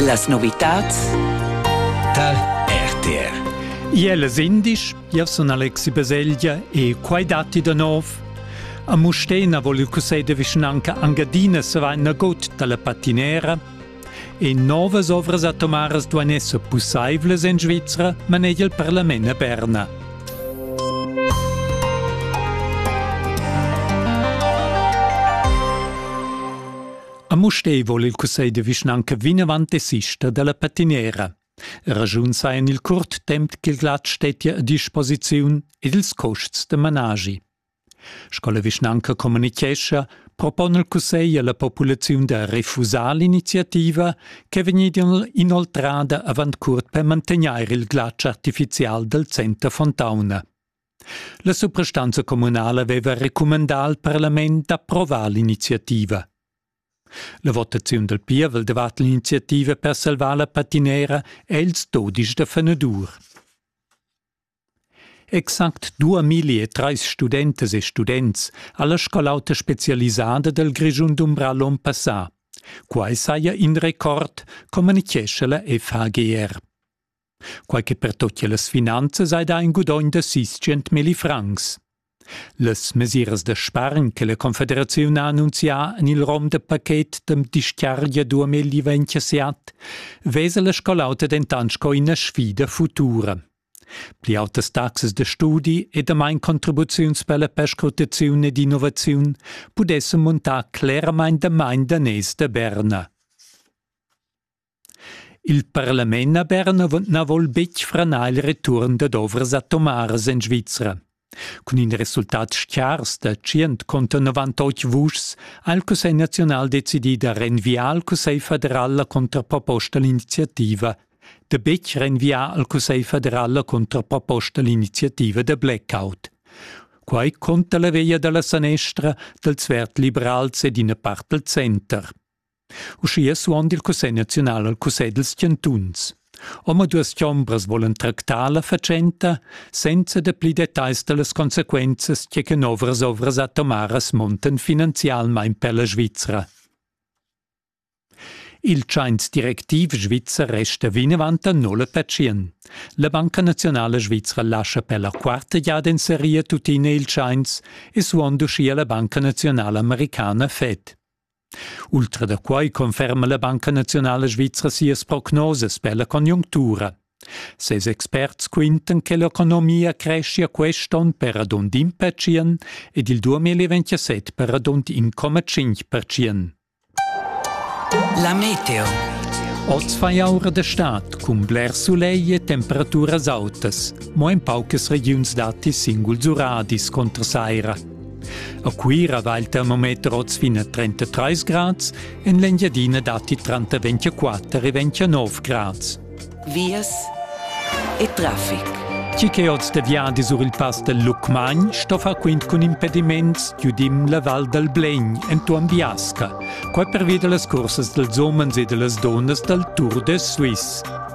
Las novitads tal RTR Iele sindisch, Jav sun Alexi Baselgia e quai datti da nov. A Mustena vol il cussegl de vischnanca Angadina se va nagot dalla patinera e novas ovras atomaras duan esser pussaivlas en Svizra, manegia il parlament a Berna. A Mustér vol il cussegl de vischnanca vinavant desister dalla patinera. Ragiun sa en il curt temp ch'il glat stettia a disposiziun ed ils custs da managi. Sco la vischnanca communichescha, propone il cussegl alla populaziun da refusar l'iniziativa che è vegnida inoltrada avant curt per mantegnair il glatsch artificial dal center Fontauna. La suprastanza communala veva recumandà al parlament d'approvar l'iniziativa. La votaziun dal pievel davart l'iniziativa per salvar la patinera è ils dodisch da Fenedur. Exact 2003 studentas e students ha la scol'auta specialisada dal Grischun dumbrà l'on passà. Quai saja in record, communichescha la FHGR. quai che pertutgia las finanzas hai dà in gudogn da sis mili francs. Las mesiras da spargn che la Confederaziun ha annunzià en il rom da paket dem dischiargia 2017 vesa la scolauta dentant sco ina sfida futura. Pli autas taxas da studi e damain contribuziuns per la perscrutaziun ed innovaziun pudessan muntar cleramain damain daners da Berna. Il parlament a Berna na vol betg franar il return dad ovras atomaras en Svizra. Cun in resultat schars da 198 vuschs ha il Cussegl naziunal decidì da renviar al Cussegl federal la contraproposta l'iniziativa, da betg renviar al Cussegl federal la contraproposta l'iniziativa da blackout. Quai conta la veglia da la sanestra, dals verd-liberals ed ina part dal center. Uschia suond il Cussegl naziunal al Cussegl dals chantuns. Omaduas chombras volan tractar la fatschenta senza da pli detagls da las consequenzas che che novras ovras atomaras montan finanzialmain per la Svizra. Il tschains directiv svizzer resta vinavant a nulla pacient. La Banca Nazionala Svizra lascia per la quarta giada in seria tuttina il tschains e suond uschia la Banca Nazionala Americana Fed. Ultra da quai conferma la Banca naziunala svizra sias prognosas per la conjunctura. Ses experts quintan che l'economia creschia quest onn per radund in percient ed il 2027 per radund 1,5 percient. La meteo. Oz fa aura da stad cun bler sulegl e temperaturas autas. Mo en paucas regiuns datti singuls uradis contra saira. A Cuira va il termometer oz fin a 33 grads, en l'Engiadina datti tranter 24 e 29 grads. Vias e traffic. Tgi che oz de viadi sur il pass del Lucmagn sto far quint cun impediments giudim la Val dal Blegn entuorn Biasca, quai pervia da las cursas dels homens e de las donnas dal Tour de Suisse.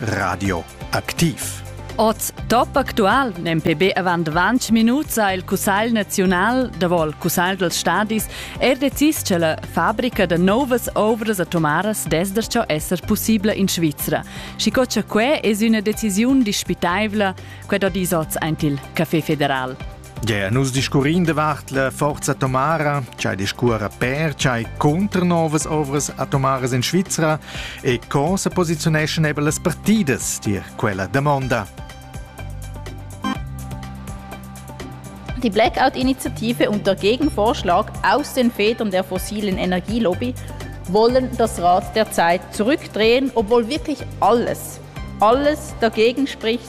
Radioaktiv. Oz top actual, nempe be avant 20 minuts ha il Cussegl naziunal, davol Cussegl dels stadis, er decis che la fabrica da novas ovras atomaras desdercio esser possibla in Svizra. Schico che que es üna decisiun dispitaivla, quet ho dis oz aint il Café Federal. Gia nus discurrin davart la forza atomara, ch'ei discuora per, ch'ei contra novas ovras atomaras in Svizra e co se posiziuneschan eben las partidas tier quella damonda. Die Blackout-Initiative und der Gegenvorschlag aus den Federn der fossilen Energielobby wollen das Rad der Zeit zurückdrehen, obwohl wirklich alles, alles dagegen spricht,